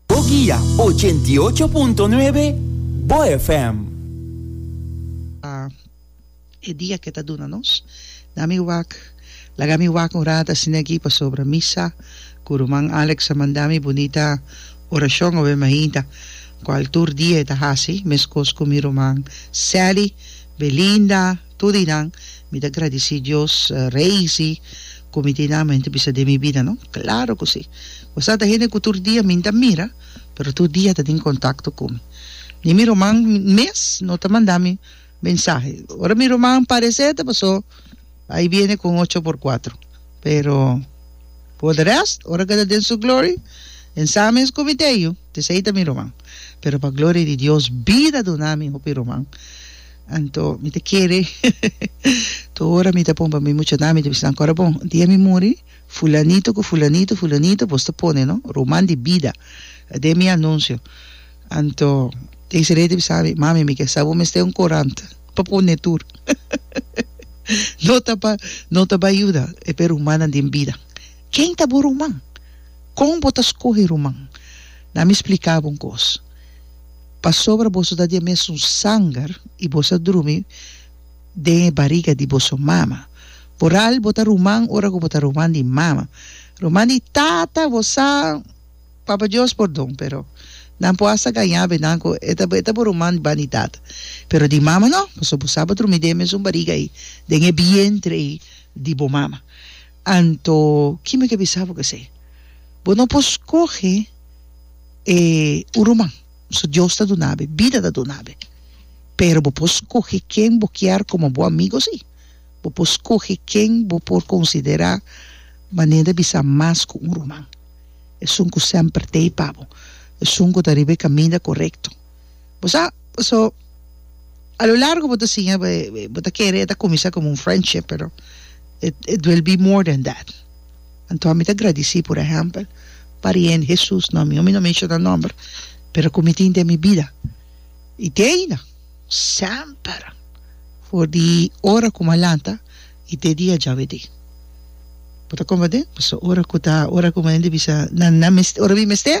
Bo guia ochenta i ocho punto nuebe Bo FM. Pa e dia ke ta duna nos. Na mi wak, laga mi wak un rata asina aki pasobra misa ku ruman Alex a manda mi bunita orashon obe mainta, kual tur dia e ta hasi, meskos ku mi ruman Sally, Belinda, Tur di nan mi ta gradici Dios Rey si cu mi tin mente bisa den mi bida no? Claro cu si. Wasa ta hende cu tur dia mi ta mira pero tur dia ta tin contacto cu mi. Ni mi ruman mes no ta manda mi mensahe. Ora mi ruman parece ta paso ahí viene con ocho por cuatro pero por de rest ora cu ta den su glory en sa mes cu mi te yu, di esey ta mi ruman. Pero pa gloria di Dios bida duna mi hopi ruman. Anto mi ta kere tur ora mi ta pon pa mi mucha nan mi ta bisa nan kora bon un dia mi muri fulanito ku fulanito fulanito bos ta pone no ruman di bida aden mi anunsio anto Desiree ta bisa mi mami mi ke sa bo mester un korant pa pone tur no ta pa no ta bai yuda e pe rumannan den bida ken ta bo ruman kon bo ta skohe ruman nan mi splika bo un kos. Pasobra boso ta di e mesun sanger i boso a drumi den e bariga di boso mama. Vooral bo ta ruman ora ku bo ta ruman di mama. Ruman di tata, bo sa, Papa Dios pordon, pero nan por hasta gañá benan ku e ta e ta bo ruman ban di tata. Pero di mama no, pasobra bo sa bo drumi den e mesun bariga ei, den e bientre ei di bo mama. Anto, kime ke bisa bo ku esei? Bo no por skohe. e un ruman so Dios ta duna be bida ta duna be pero bo por skohe ken bo kier komo bo amigo si bo por skohe ken bo por konsidera manera di bisa mas ku un ruman esun ku semper tei pa bo esun ku ta riba e kaminda korekto. Bo sa, paso a lo largo bo ta siña bo e, bo ta kere e ta kuminsá komo un friendship, pero it, it will be more than that. Anto mi ta gradisí, por ehèmpel, pariente Hesus nòmber, yo mi no menshona nòmber, pero ku mi tin den mi bida, i te ainda, semper, for di ora ku mi a lanta i te di a djave di. Bo ta komprendé? Paso ora ku ta, ora ku mi a hende bisa, nan, nan mes, ora mi mest'é,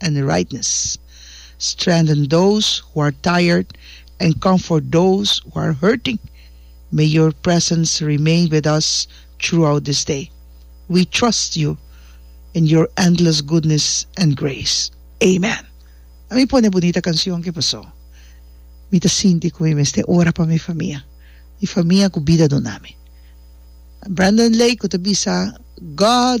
en e rightness, strengthen those who are tired and comfort those who are hurting, may your presence remain with us throughout this day, we trust you in your endless goodness and grace, amen. A mi pone bunita cancion ki paso mi ta sinti cu mi mester ora pa mi famia, mi famia cu bida duna mi. Brandon Lake cu ta bisa God.